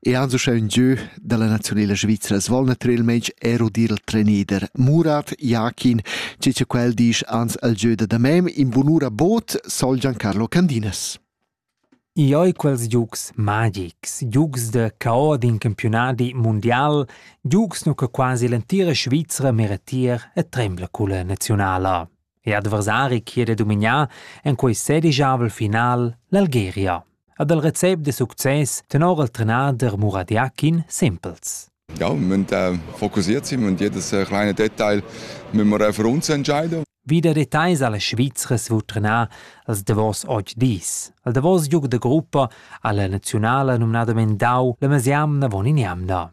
E ans uschè ün giö da la naziunela svizra svolna trer il meig ero dir il trenider Murat Jakin, che cha quel disch ans al giö da damem in bunura bot sol Giancarlo Candinas. I oi quels giugs magics, giugs da cao d'in campionadi mundial, giugs nu che quasi l'entira Svizra meretier e trembla culla nazionala. e adversari chi'd è domignà en quei sedigiavel final l'Algeria. Ad el recept de success tenor il trenader Muradiakin Simpels. Ja, wir müssen äh, fokussiert sein und jedes äh, kleine Detail müssen wir für uns entscheiden. Wieder Details alle Schweizers wo trenà als Davos oggi dis. Al Davos giug de gruppa alla nazionale nomnadament dau la mesiamna von in jamna.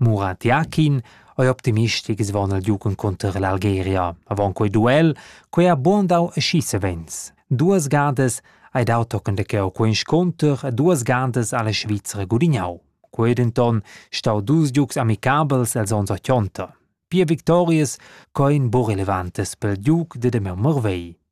Murat Yakin ei optimistic svon el giugen cunter l'Algeria. Avon quei duel, quei ha buon dau aschi savens. Duas gadas hai dau tochen de cheu quei sconter e duas gadas ha la Svizra gudignau. Quei denton stau dus giugs amicabels els ons ochonta. Pia victorias co in bu relevantes pel giug de Demel Morvei.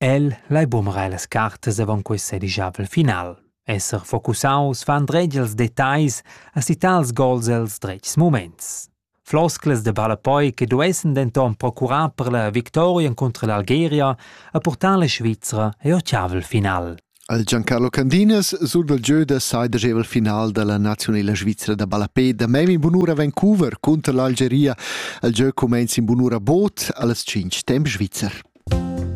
El lai bumrar las cartas avon quei sedigiavel final. Esser focusaus fa andretg els detagls a sittar els gols els dretgs muments. Flosclas de ballapoi che duessen denton procurar per la victoria contro l'Algeria a portar la Svizra e ottavel final. Al Giancarlo Candinas sur dal gieu da saidagevel final da la nazionala svizra da ballapé da mem in bunura Vancouver cunter l'Algeria. Il gieu cumenza in bunura bod a las 5 temp svizzer.